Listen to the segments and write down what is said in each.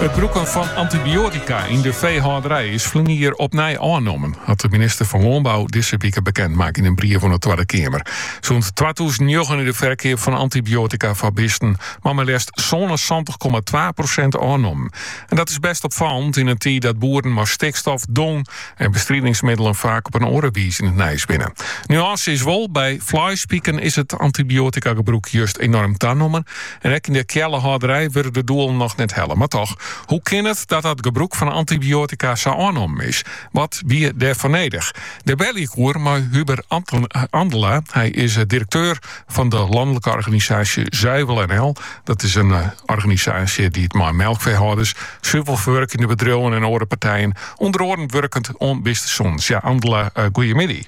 It brûken fan antibiotika yn de feehâlderij is ferline jier opnij ôfnommen, hat de minister fan Lânbou dizze wike bekend makke yn in brief oan de Twadde Keamer. Sûnt twatûzen njoggen is de ferkeap fan antibiotika foar bisten mei mar leafst sânensantich komma twa prosint ôfnommen. En dat is bêst opfallend yn in tiid dat boeren mei stikstof, dong en bestridingsmiddelen faak op in oare wize yn it nijs binne. Nuânse is wol, by fleispiken is it antibiotika-gebrûk just enorm tanommen. En ek yn de keallehâlderij wurde de doelen noch net helle. Mar toch, hoe kin it dat dat gebrûk fan antibiotika sa ôfnommen is? Wat wie dêrfoar nedich? Dêr belle ik oer mei Hubert Andela. Hy is direkteur fan de lanlike organisaasje Zuivel NL. Dat is in organisaasje dy't mei melkfeehâlders, suvelferwurkjende bedriuwen en oare partijen ûnder oaren wurket oan bistesûnens. Ja, Andela, goeiemiddei.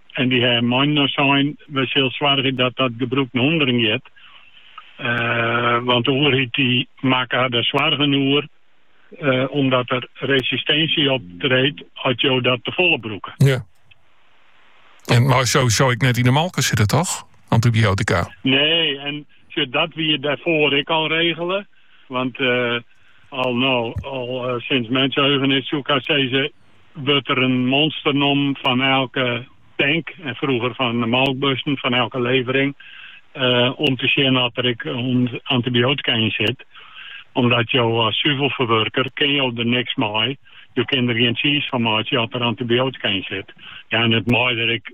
En dy ha mei-inoar sein, wy sille soargje dat dat gebrûk nei ûnderen giet, want de oerheid dy makke har der soargen oer omdat der resistinsje optreedt as jo dat tefolle brûke. Ja. En mei sowieso ek net yn de molke sitte, toch? Antibiotika. Nee, en sjoch, dat wie dêrfoar ek al regele. Want eh, al no, al eh, sinds mensheugenis, soe ik haast sizze, wurdt der in monster nommen fan elke tank, en frûger fan de melkbussen fan elke levering, om te sjen oft der ek antibiotika yn sit. Omdat jo as suvelferwurker kinne jo der niks mei, jo kinne der gjin tsiis fan meitsje as der antibiotika yn sit. Ja, en it mei der ek.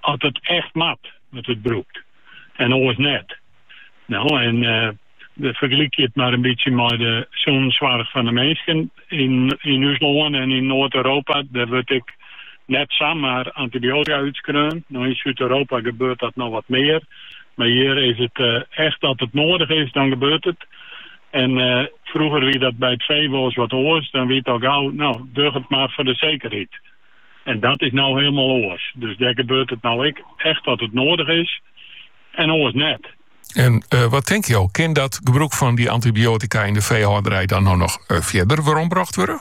As it echt moat, wurdt it brûkt en oars net. No, en fergelykje it mar in bytsje mei de sûnenssoarch fan de minsken yn ús lân en yn Noard-Europa. Dêr wurdt ek net samar antibiotika útskreaun. No, yn Súd-Europa gebeurt dat noch wat mear, mar hjir is it echt as it noadich is, dan gebeurt it. En frûger wie dat by it fee wolris wat oars, dan wie it al gau, no, doch it mar foar de sekerheid. En dat is no hielendal oars. Dus dêr gebeurt it no ek echt as it noadich is en oars net. En eh, wat tink jo, kin dat gebrûk fan dy antibiotika yn de feehâlderij dan no noch eh, fierder werombrocht wurde?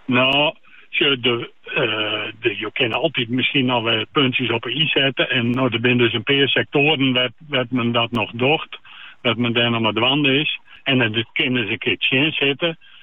No, sjoch, de, eh, de, jo kinne altyd miskien noch wol puntsjes op 'e i sette. En no, der binne dus in pear sektoaren wêr, wêr't men dat noch docht. Wêr't men dêr noch mei dwaande is. En dat kin ris in kear tsjinsitte.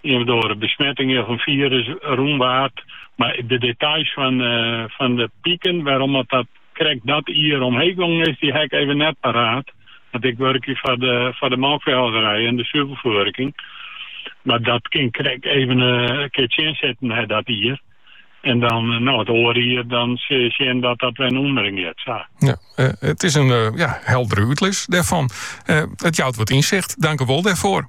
Ien of oare besmetting of in firus rûn waard, mar de details fan de piken wêrom't dat krekt dat jier omheech gongen is, dy ha ik even net paraat, want ik wurkje foar de melkfeehâlderij en de suvelferwurking. Mar dat kin ik krekt even in kear tsjinsetten nei dat jier en dan no it oare jier dan sil je sjen dat dat wer in útsûndering is. Sa. Ja, it eh, is in eh, ja, heldere útlis dêrfan. Eh, it jout wat ynsicht. Dank u wol dêrfoar.